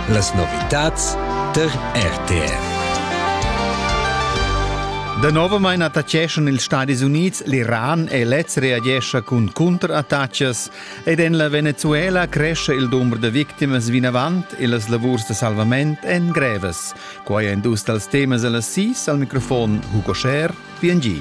Las novitads der RTR. Danovamain attaccheschan ils Stadis Unids l'Iran e lez reagescha cun cunterattachas ed en la Venezuela crescha il dumber da victimas vinavant e las lavurs da salvament èn grevas. Quai è dus dals temas a las sis al microfon Hugo Scher, PNG.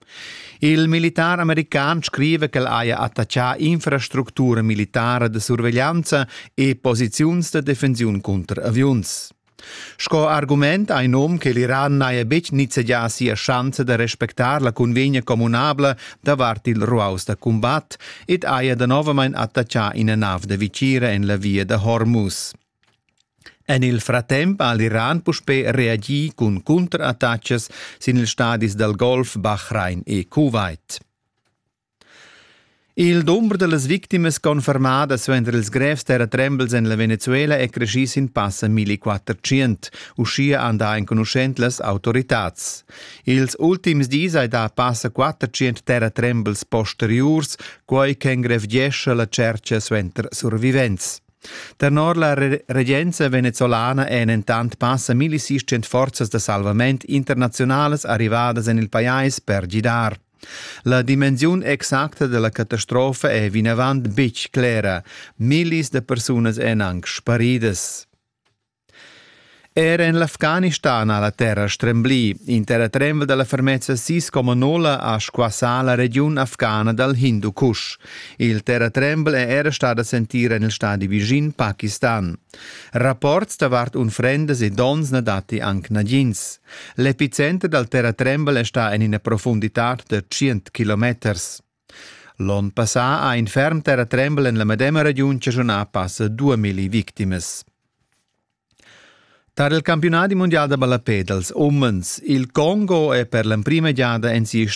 Il militar american scriva ch'el haja attachà infrastructura militara da surveglianza e posiziuns da defensiun cunter aviuns. Sco argument ha in um che l'Iran n'haja betg nizzegià sia schanza da respectar la cunvegna communabla davart il ruaus da cumbat ed haja danovamain attachà ina nav da vitgira en la via da Hormuz. En il fratemp ha l'Iran puspè reagì cun cunterattachas sin ils stadis dal Golf Bahrain e Kuwait. Il dumber da las victimas confermada suenter ils grevs terratrembels en la Venezuela è creschì sin passa 1400. Uschia han dà enconuschent las autoritads. Ils ultims dis hai dà passa 400 terratrembels posteriurs, quai ch'engrevgescha la tschertga suenter survivents. Tenor la regenza venezuelana èn entant passa 1600 forzas da salvament internaziunalas arrivadas en il pajais per gidar. La dimensiun exacta della catastrofa è vinavant betg clera. Millis da persunas èn anc sparidas. Era en l'Afghanistan ha la terra stremblì. In terratrembel da la fermezza sis Comonola ha squassà la regiun afghana dal Hindu Kush. Il terratrembel è era stat a sentire nel stadi vicin Pakistan. Rapports davart unfrendas e dons na datti anc nagins. L'epicenter dal terratrembel è stà en ina profundità da 100 kilometers. L'onn passà ha in ferm terratrembel en la medema regiun chaschunà passa 2000 victimas. Tar il campiunadi mundial da ballapè dals umens il Congo è per l'emprima giada en sia storia